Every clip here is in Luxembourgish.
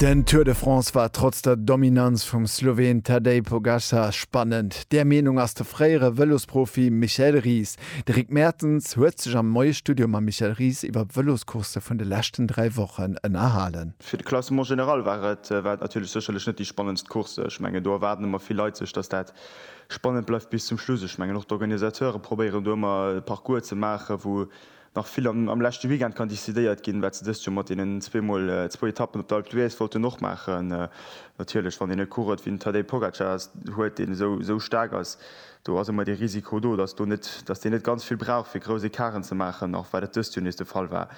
Den Tour de France war trotz der Dominanz vum Sloween Tadej Pogacar spannend. Där Meenung ass de fréiere Vëlosprofi Michael Ries. De Rick Mertens huet sech am neie Studio mam Michael Ries iwwer d'Vëloscoursse vun de leschten dräi Wochen ënnerhalen. Fir de Classement général war et war et natierlech sécherlech net déi spannendst Course. Ech mengen do erwaarden ëmmer vill Leit sech, datt dat spannend bleift bis zum Schluss. Ech mengen och d'Organisateure probéieren do ëmmer e Parcours ze maachen, wou nach vill am leschte Weekend kann decidéiert ginn, wat se dëst Joer mat deenen zwee mol zwou Etappen op der Alpe d'Huez wollten och maachen. Natierlech, wann een e Coureur wéi den Tadej Pogacar huet, deen esou staark ass, do ass ëmmer dee Risiko do, datt do net, datt deen net ganz vill brauch fir grouss Ecarten ze maachen, och wat et dëst Joer nees de Fall war.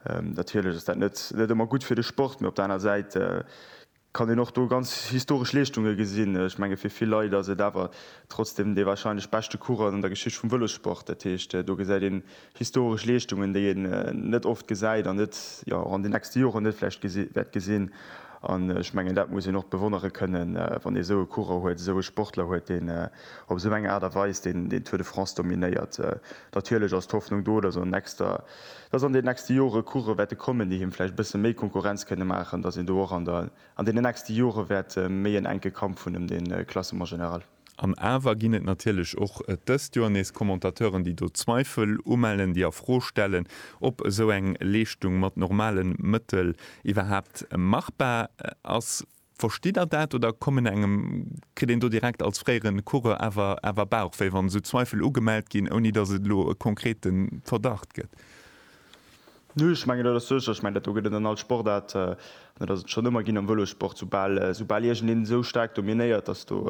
Natierlech ass dat net ëmmer gutt fir de Sport, mee op der aner Säit kann een och do ganz historesch Leeschtunge gesinn. Ech menge fir vill Leit ass et awer trotzdem dee warscheinlech beschte Coureur an der Geschicht vum Vëlossport. Dat heescht, do gesäit een historesch Leeschtungen, déi een net oft gesäit an net, jo, och an den nächste Joren net vläicht wäert gesinn. An ech mengen, dat muss een och bewonnere kënnen, wann ee esou e Coureur huet, esou e Sportler huet, deen op esou eng Aart a Weis deen Tour de France dominéiert. Natierlech ass d'Hoffnung do, dass an nächster. dass an den nächste Jore Course wäerte kommen, déi him vläicht e bësse méi Konkurrenz kënne maachen, dass een do och an deenen nächste Jore wäert méi en enke Kampf hunn ëm de Classement général. An awer ginn et natierlech och dëst Joer nees Commentateuren, déi do Zweifel umellen, déi a Fro stellen, ob esou eng Leeschtung mat normale Mëttel iwwerhaapt machbar ass. Verstitt der dat oder kommen engem, kritt een do direkt als fréiere Coureur awer awer Bauchwéi, wann esou Zweifel ugemellt ginn, ouni datt et elo e konkrete Verdacht gëtt? Nö, ech mengen dat ass sécher. Ech mengen dat do gëtt et an all Sportaart, an dat ass et schonn ëmmer ginn am Vëlossport, soubal soubal iergendeen esou staark dominéiert, datt do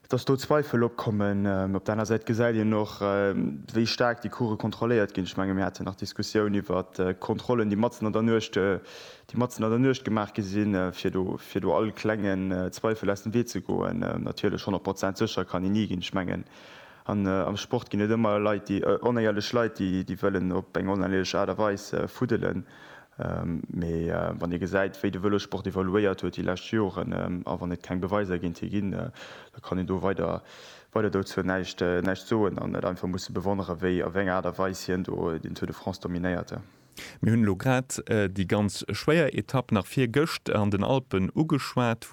Dass do Zweifel opkommen, op der aner Säit gesäit een och, wéi staark déi Course kontrolléiert ginn. Ech menge mir haten nach d'Diskussioun iwwer d'Kontrollen, déi matzen an der Nuecht, déi matzen an der Nuecht gemaach gi sinn, fir do, fir do all klengen Zweifel aus dem Wee ze goen. Natierlech, honnert Prozent sécher kann een ni ginn. Ech mengen, an am Sport ginn et ëmmer Leit, déi, onéierlech Leit, déi, déi wëllen op eng oneierlech Aart a Weis fuddelen. Mee wann ee gesäit, wéi de Vëlossport evoluéiert huet déi lescht Joren, a wann et keng Beweiser géint hie ginn, da kann een do weider dozou näischt soen an et einfach musse bewonneren, wéi a wéi enger Aart a Weis hien do den Tour de France dominéiert. Mir hunn elo grad déi ganz schwéier Etapp nach virgëscht an den Alpen ugeschwat,